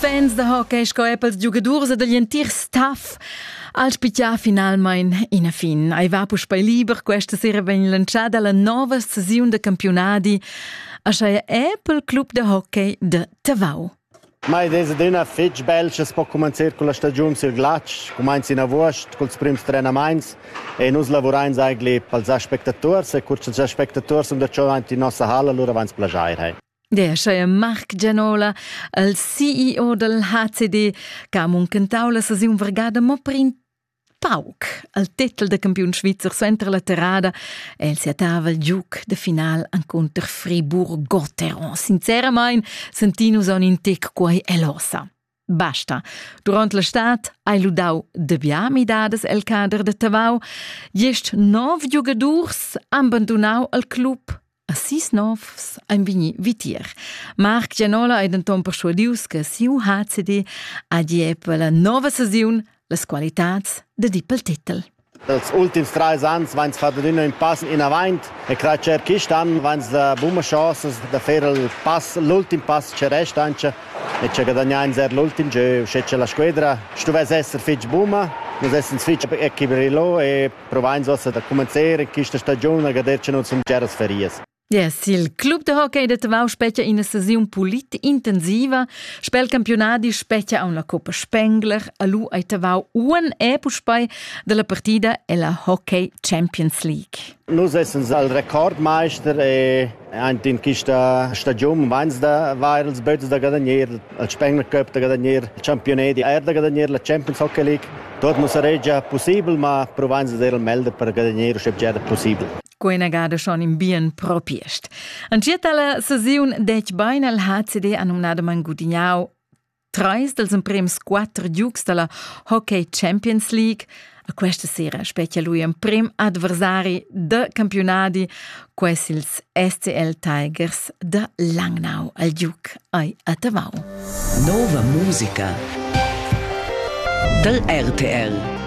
Fans da hockey sco er pels giugadurs e dagl entir staff al spitia finalmain ina fin. Ei va puspei liber questa sera vegn lantschada la nova sesiun da campiunadi. Aschia è pel club de hockey de Tavau. Ma ed es adüna fitg bel sche po cumanzir con la stagiun sil glatsch, cumainz in avuost culs prims trenamaints e nus lavurains eigentlich pels aspectators e cur cha'ls aspectators sun da giò aint in nossa halla, lura vains plajair, hey. Der scheie Marc Gianola, il CEO del HCD, che ha muncentau la saziun vargada mo per in pauc al titel de campiun svizzer suenter la terrada e el siatava il giuc de final encunter Fribourg-Gotteron. Sinceramain, sentì nus en in tec quei elosa. Basta. Durant l'estat hai lu dau dabia midadas el cader de Tavau. Gest nov giugadurs han bandunau el club. A sis novs ein vegni vitier. Marc Gianola ei denton perschuadius che siu HCD ha di eppa la nova saziun las qualitads de di pel titel. Dals ultims trais ans vains fat adüna ün pass inavant e crai cha quist an vains da buna chasa da fer il pass l'ultim pass cha resta auncha e cha guadagnains eir l'ultim giö uschè cha la squedra stuvess esser fich buna. Nus essans fich equilibrà e provains uossa da cumanzer quista stagiun a gader cha nus sun bgeras ferias. Ja, sil club de hockey de Tavau specia ina sesiun pulit intensiva. Spel campionadi specia aun la Coppa Spengler. Alu ai Tavau uan e puspei della partida ella Hockey Champions League. Nus essen al Rekordmeister e ein in quista stagiun veins da vair als bötes da gadanier, al Spengler Cup da gadanier, il Championat di aer da gadanier, la Champions Hockey League. Dort nus saregia possibel, ma provains da er al melder per gadanier, sche già possibel. co inagada schon in bien propiest. Angietta la sesiun dec bain al HCD annunada Mangudignau trais dels emprems quattro giugs della Hockey Champions League. A questa sera specchia lui emprem adversari de campionati, ques ils SCL Tigers de Langnau al Duc ai a Tavau. Nova musica del RTL